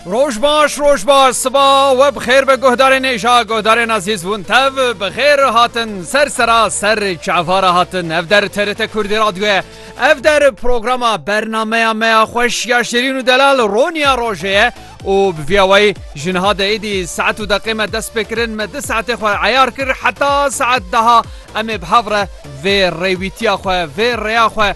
Roj baş roj baş siba we bixêr be guhdarên êja guhdarên azîz hûn tev bixêr hatin ser sera ser çavara hatin ev der terite kurdî radyoye ev der programa bernameya meya xweş ya şêrîn û delal roniya rojê ye û bi viyawayî jinha de êdî saet û deqê me dest pê kirin me di saetê xwe eyar kir heta saet daha em ê bi hev re vê rêwîtiya xwe vê rêya xwe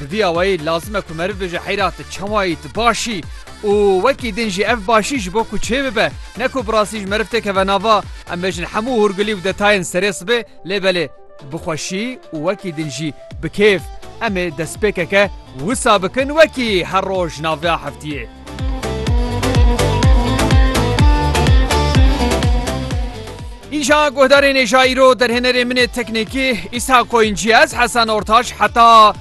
Di vî awayî lazim e ku meriv bêje heyra tu çawa yî, tu baş î û wekî din jî ev başî ji bo ku çê bibe ne ku bi rastî ji meriv têkeve nava. Em bêjin hemû hûrgulî û detayên serê sibê lê belê bi xweşî û wekî din jî bi kêf em ê destpêkeke wisa bikin wekî her roj navya heftiyê. Îja guhdarên êja îro derhênerê min ê teknîkî Îsa Koyîncî ez Hesen Ortaş heta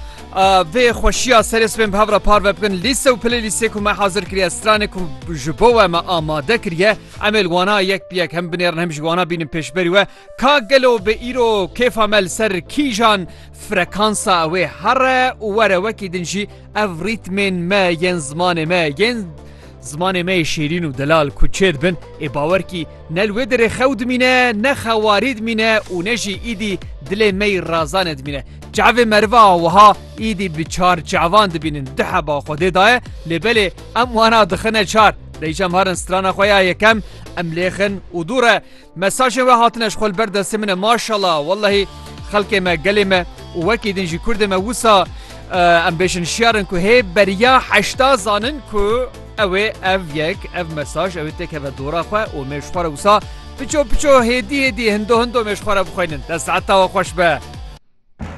vê xweşiya serê sibên bi hev re parve bikin lîse û pilê lîsê ku me hazir kiriye stranê ku ji bo we me amade kiriye em ê wana yek bi yek hem binêrin hem ji wana bînin pêşberî we ka gelo bi îro kêfa me li ser kîjan frekansa ew ê here û were wekî din jî Ev rîtmên me yên zimanê me yên zimanê me yê şêrîn û delal ku çê dibin ê bawer kî ne li wê dirê xew dimîne ne xewarî dimîne û ne jî îdî dilê me yî razanê dimîne. Çavê meriva wiha îdî bi çar çavan dibînin di heba Xwedê da ye lê belê em wana dixine çar. Deyşem harin strana xwe ya yekem em lêxin û dû re Mesajên we hatine ji xwe li ber destê min e maşallah wellehî xelkê me gelê me û wekî din jî kurdê me wisa em bêjin şiyar in ku hê beriya heşta zanin ku ew ê ev yek ev mesaj ew ê têkeve dora xwe û mêj xwe re wisa piço piço hêdî hêdî hindo hindo mêj xwe re bixwînin te saeta we xweş be.